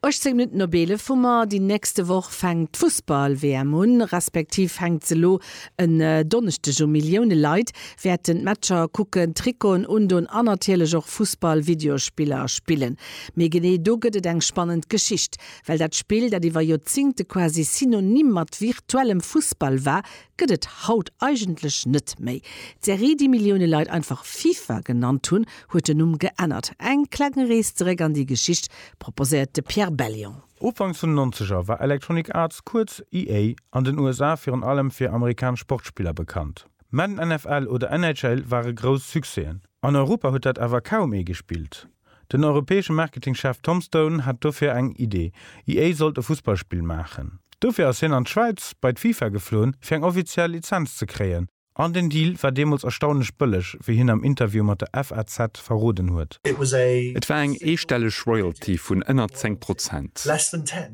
18 Minutten op 11 hu mer. Déi nächste Woch fänkt d'Fussball-WM un, respektiv fänkt se elo en Donneschdeg u. Millioune Leit wäerten d'Matcher kucken, Trikoten undon an natierlech och Fussball-Videospiller spillen. Mee genee do gëtt et eng spannend Geschicht. Well dat Spill, dat iwwer Joerzingte quasi synonym mat virtuellem Fussball war, gëtt et haut eigentlech net méi. D'Serie, déi Millioune Leit einfach FIFA genannt hunn, huet den Numm geännert. Eng kleng Rees zeréck an déi Geschicht proposéiert de Pierre Bellion. Ufanks vun den Nonzeger war Electronic Arts, kuerz EA, an den USA virun allem fir amerikanesch Sportspiller bekannt. Madden NFL oder NHL ware grouss Succèsen. An Europa huet dat awer kaum ee gespillt. Den europäesche Marketingchef Tom Stone hat dofir eng Idee, EA sollt e Fussballspill maachen. Dofir ass hien an d'Schwäiz bei d'FIFA gefloen, fir eng offiziell Lizenz ze kréien. An den Deal war deemools erstaunlech bëlleg, wéi hien am Interview mat der FAZ verroden huet. Et war eng eestelleg Royalty vun ënner 10 Prozent.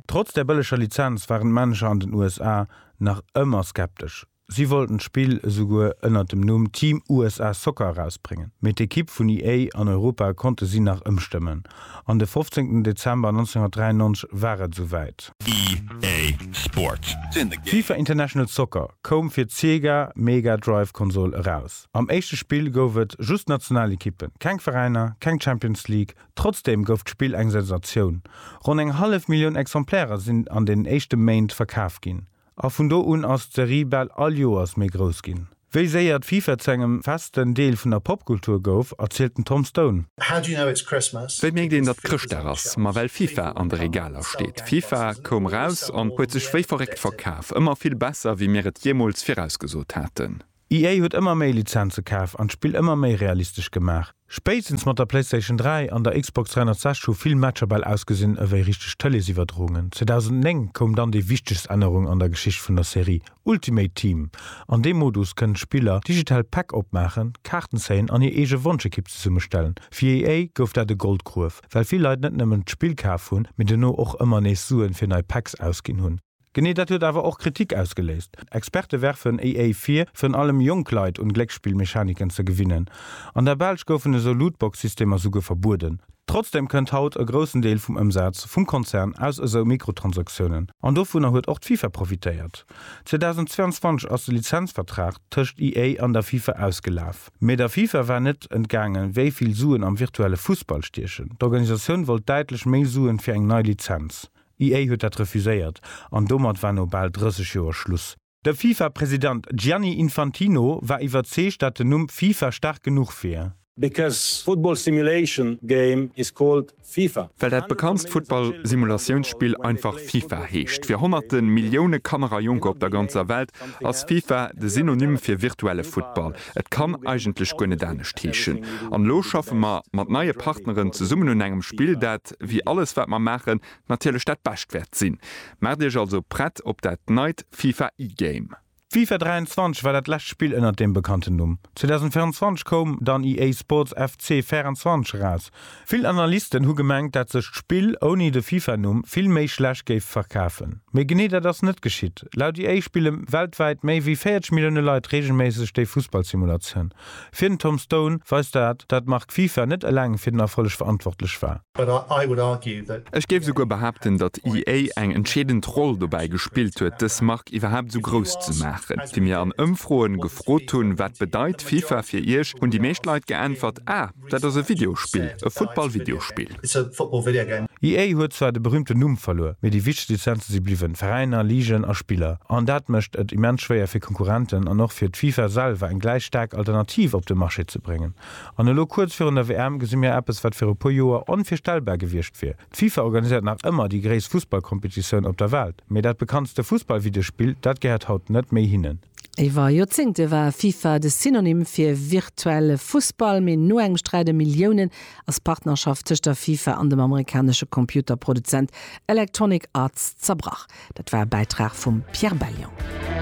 Trotz der bëlleger Lizenz waren d'Manager an den USA nach ëmmer skeptesch. Si wollten d'Spill esouguer ënnert dem Numm Team USA Soccer erausbréngen, mee d'Ekipp vun EA an Europa konnte si nach ëmstëmmen, an de fofzéngten Dezember 1993 war et esou wäit. EA Sports, sinn de Game. FIFA International Soccer koum fir d'Sega Mega Drive Konsol eraus. Am éischte Spill gouf et just national Ekippen, keng Veräiner, keng Champions League. Trotzdeem gouf d'Spill eng Sensatioun, ronn eng hallef Millioun Exemplairen sinn an den éischte Méint verkaf ginn. A vun do un ass d'Serie bal all Joers méi grouss ginn. Wéi séier d'FIFA zu engem festen Deel vun der Popkultur gouf, erzielt den Tom Stone. Wéi mierkt een, datt Chrëschtdag ass? Ma well FIFA an de Regaler steet. FIFA koum eraus an huet sech wéi verréckt verkaf. Ëmmer vill besser, wéi mir et jeemools virausgesot haten. EA huet ëmmer méi Lizenze kaf an d'Spill ëmmer méi realistesch gemaach. Spéitstens mat der PlayStation 3 an der Xbox 360 hu vill Matcher bal ausgesinn ewéi richteg Tëleesiwwerdroungen. 2009 koum dann déi wichtegst Ännerung an der Geschicht vun der Serie, Ultimate Team. An deem Modus kënnen d'Spiller digital Päck opmaachen, Kaarten zéien an hir eege Wonschekipp zesummestellen. Fir EA gouf dat e Goldgruef, well vill Leit net nëmmen d'Spill kaf hunn, mee dono och ëmmer nees Suen fir nei Packs ausginn hunn. Genee dat huet awer och Kritik ausgeléist. Experte werfen EA vir, virun allem jonk Leit un Glécksspillmechaniken ze gewinnen. An der Belsch goufen esou Lootbox-Systemer souguer verbueden. Trotzdeem kënnt haut e groussen Deel vum Ëmsaz vum Konzern aus esou Mikrotransaktiounen, an dovunner huet och d'FIFA profitéiert. 2022 ass de Lizenzvertrag tëscht EA an der FIFA ausgelaf. Mee der FIFA war net entgaangen, wéi vill Suen am virtuelle Fussball stiechen. D'Organisatioun wollt däitlech méi Suen fir eng nei Lizenz. D'EA huet dat refuséiert an domat war no bal 30 Joer Schluss. De FIFA-President Gianni Infantino war iwwerzeegt, dat den Numm FIFA staark genuch wier. Because football simulation game is called FIFA. Well dat bekanntst Futtball-Simulatiounspill einfach FIFA heescht. Fir honnerte Millioune Kanner a Jonker op der ganzer Welt ass FIFA de Synonym fir virtuelle Futtball. Et kann eigentlech guer net anescht heeschen. An elo schaffe mer mat neie Partneren zesummen un engem Spill, dat. wéi alles wat mer maachen, natierlech dat Bescht wäert sinn. Maacht iech also prett op dat neit FIFA E-Game. FIFA 23 war dat lescht Spill ënnert deem bekannten Numm. 2024 koum dann EA Sports FC 24 eraus. Vill Analysten hu gemengt, dat sech d'Spill ouni de FIFA-Numm vill méi schlecht géif verkafen. Mee genee dat ass net geschitt. Laut EA spille weltwäit méi wéi 40 Millioune Leit reegelméisseg déi Fussballsimulatioun. Fir den Tom Stone weist dat, dat d'Mark FIFA net eleng fir den Erfolleg verantwortlech war. Ech géif esouguer behaapten, datt EA eng entscheedend Roll dobäi gespillt huet, dës Mark iwwerhaapt esou grouss ze maachen. Wéi mir an Ëmfroen gefrot hunn, wat bedeit FIFA fir iech, hunn déi meescht Leit geäntwert, Ah, Dat ass e Videospill, e Football-Videospill. EA huet zwar de berüümten Numm verluer, mee déi wichtegst Lizenze si bliwwen, Veräiner, Ligen a Spiller. An dat mécht et immens schwéier fir Konkurrenten an och fir d'FIFA selwer eng gläich staark Alternativ op de Marché ze bréngen. An elo kuerz virun der WM gesi mir eppes, wat viru puer Joer onvirstellbar gewiescht wier. D'FIFA organiséiert nach ëmmer déi gréisst Fussballkompetitioun op der Welt, mee dat bekanntste Fussballvideospill, dat gehéiert haut net méi hinnen. Iwwer Joerzéngte war FIFA de Synonym fir virtuelle Fussball, mee no engem Sträit ëm Milliounen ass d'Partnerschaft tëscht der FIFA an dem amerikanesche Computerproduzent Electronic Arts zerbrach. Dat war e Bäitrag vum Pierre Bellion.